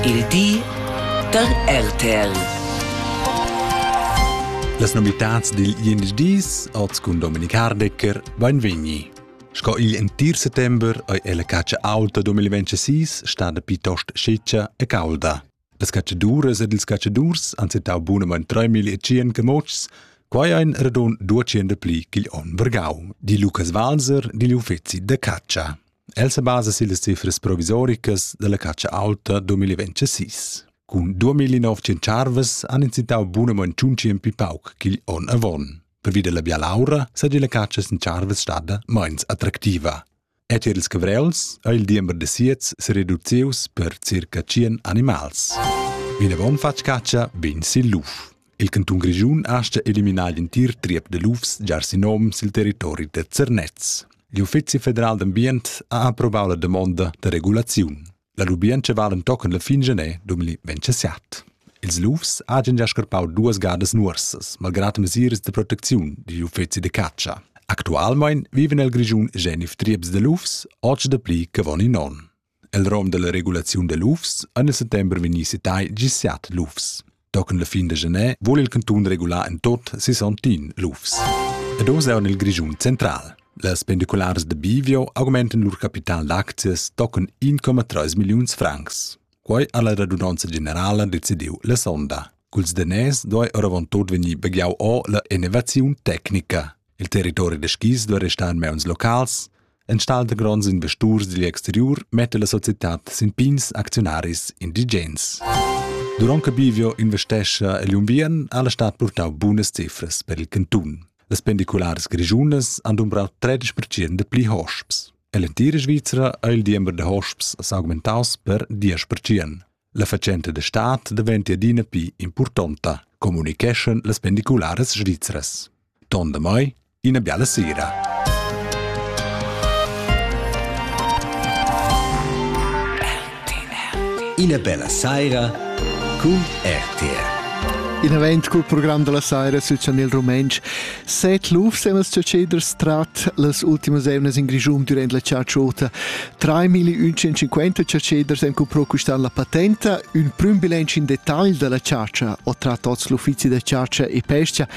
Il di da RTL. Las novitads dil Dienstdies oz cun Dominik Hardecker beinvegni. Sco igl entir settember ei ella catscha auta 2026 stada piuttost sciccia e caulda. Las catschaduras ed ils catschadurs han settau bunamein 3000 camotschs, quai ein radun 200 pli ch'igl onn vargau, di Lukas Walser digl uffeci da catscha. El sa basa sillas cifras provisoricas dalla catscha aulta 2026. Cun 2900 charvas han incitau buna manciunci en pi pauc ch'igl onn avon. Pervi della bialaura sagia la catscha sin charvas stada meins attractiva. E tier ils cavrels ha il diember de siets se reducius per circa 100 animals. Vinavon fatg catscha bin sil luf. Il cantun Grischun astga eliminar l'entir triep da lufs giar sin nom sil territori da Zernez. L'Uffizi federal d'ambient ha approvau la damonda da regulaziun. La lubientscha vala tochen la fin genè 2027. Ils lufs hagen già scarpau duas gadas nuorsas, malgrad mesiras de proteziun digl uffizi de catscha. Actualmein viven el Grischun genif trieps de lufs, och de pli che von in on. El rom dalla regulaziun da lufs ein a settember vegni setai gis siat lufs. Tochen la fin da gener vul il cantun regular en tot sesontin lufs. Ed oz è il Grischun central. Las pendiculares de Bivio augmenten lur capital d'aczias tochen 1,3 milliuns francs. Quei ha la radunanza generala decidiu la sonda. Culs daners doi oravon tot vegnir begliau o la innovaziun tecnica. Il territori da skis duai restar en mauns locals. Enstagl da gronds investurs digl exteriur metta la societad sin pigns acziunaris indigens. Durant che Bivio investescha egl unviern ha la stad purtau bunas cifras per il cantun. Las pendicularas grischunas han dumbrau 30% da pli hosps. Ell'entira Svizzera ha il diember da hosps s'augmentaus per 10%. La fatschenta da stat daventia adina pli impurtonta, communiceschan las pendicularas svizras. Ton da mai, ina biala sera. Ina bella saira cun RTR. In event cul program della saira sü Chanel Rumentsch. Set lufs emas chatscheders trat las ultimas evnas in Grischun durant la chartschuota. 3.150 caceders han cumprò quist'an la patenta, ün prüm bilancio in dettagl da la chargia ho tratto oz l'uffizi da chargia e pesca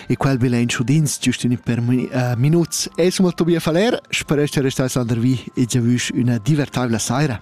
e quel bilancio d'ins giust in per uh, minuts. Es molto bia faler, speresch che restai Sander Vi e giavüsch üna divertabla saira.